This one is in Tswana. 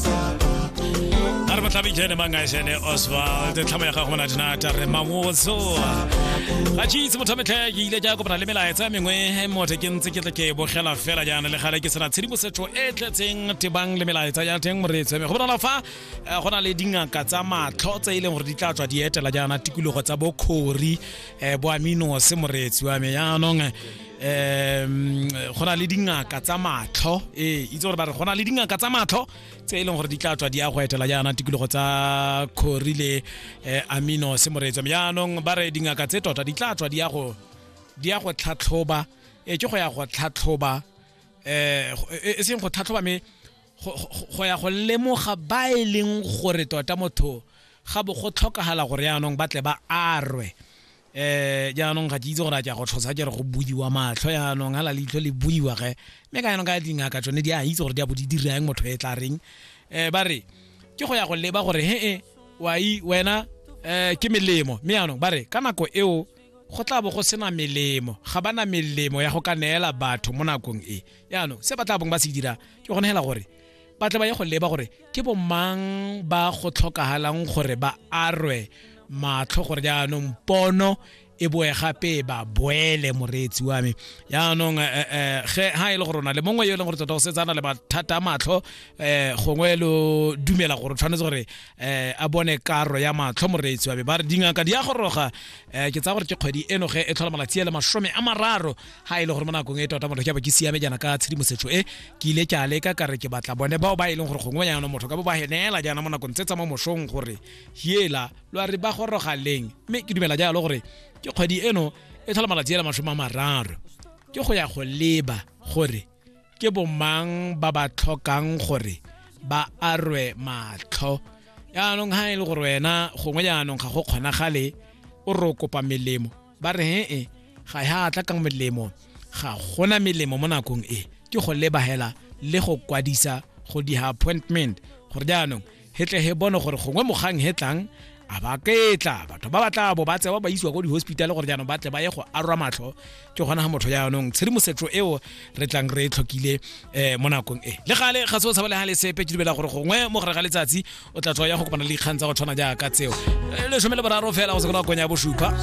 a re batlhabijene mangaešene oswald tlhamo ya gago mona dinata re mangotso ga jeitse motho metlhe ke ile ke ya kopana le melaetsa mengwe mothe ke ntse ke tle ke bogela fela jaana le gale ke sena tshedimosetso e tletseng tebang le melaetsa ya teng moreetseme go bonala fa eh, go na le dingaka tsa matlho tse e leng gore di tla tswa di etela jaana tikologo tsa bokgori um eh, boaminose moreetsi wa me jaanong um go na le dingaka tsa matlho ee itse gore ba re go na le dingaka tsa matlho tse e leng gore di tla tswa di ya go etela jaana tikologo tsa khori le eh, amino semoretso jaanong ba re dingaka tse tota di tla tswa di ya go di ya go tlhatlhoba e ke go ya go tlhatlhoba eh e seng go tlhatlhoba me go ya go lemoga ba e leng gore tota motho ga bo go tlhokagala gore yaanong ba tle ba arwe eh jaanong ga ke itse gore a ke a go tlhosa ke re go buiwa matlho yaanong hala leitlho le buiwa ge mme ka yanong ka dingaka tsone di a itse gore di a bo di dirang motho e tla reng um ba re ke go ya go leba gore he e wai wena um ke melemo mme yaanong ba re ka nako eo go tla bo go sena melemo ga ba na melemo ya go ka neela batho mo nakong e yaanong se ba tla bong ba se dira ke gone hela gore ba tle ba ye go leba gore ke bomang ba go tlhokagalang gore ba arwe matlho gore jaanong pono e boe gape ba boele moreetsi wa me jaanong ge eh, eh, eh, ha e le gore na le mongwe yo e leng gore tota go setsana le mathata a matlho um gongwe lo dumela gore tshwanetse gore um a bone karo ya matlho moreetsi wa me ba re dingaka di ya goroga um ke tsaya gore ke kgwedi eno ge e tlhola malatsi a le masome a mararo ha e le gore mo nakong e tota motho ke ba ke siame jaana ka tshedimosetso e ke ile ke a leka ka re ke batla bone bao ba e leng gore gongwe yana motho ka bo ba henela jaana mo nakong tse tsa mo mosong gore hiela lo a re ba goroga leng mme ke dumela jalo gore ke kgwedi eno e tlhola malatsi ela masome a mararo ke go ya go leba gore ke bomang ba ba tlhokang gore ba arwe matlho yaanong ha e le gore wena gongwe jaanong ga go kgonagale o re o kopa melemo ba re he-e ga ya tla ka melemo ga gona melemo mo nakong e ke go lebagela le go kwadisa go di ha appointment gore jaanong he tle he bone gore gongwe mogang he tlang a ba ketla batho ba batla bo ba tsewa ba isiwa ko di-hospital gore jaanong ba tle ba ye go arwa matlho ke gona ga motho jaanong tshedimosetso eo re tlang re e tlhokile um mo nakong e le gale ga se o tshabalega le sepe ke dumela gore gongwe mo gare ga letsatsi o tla tswa ya go kopana le dikgang tsa go tshwana jaaka tseo eh, lesome le boraro fela go se nakong ya bosupa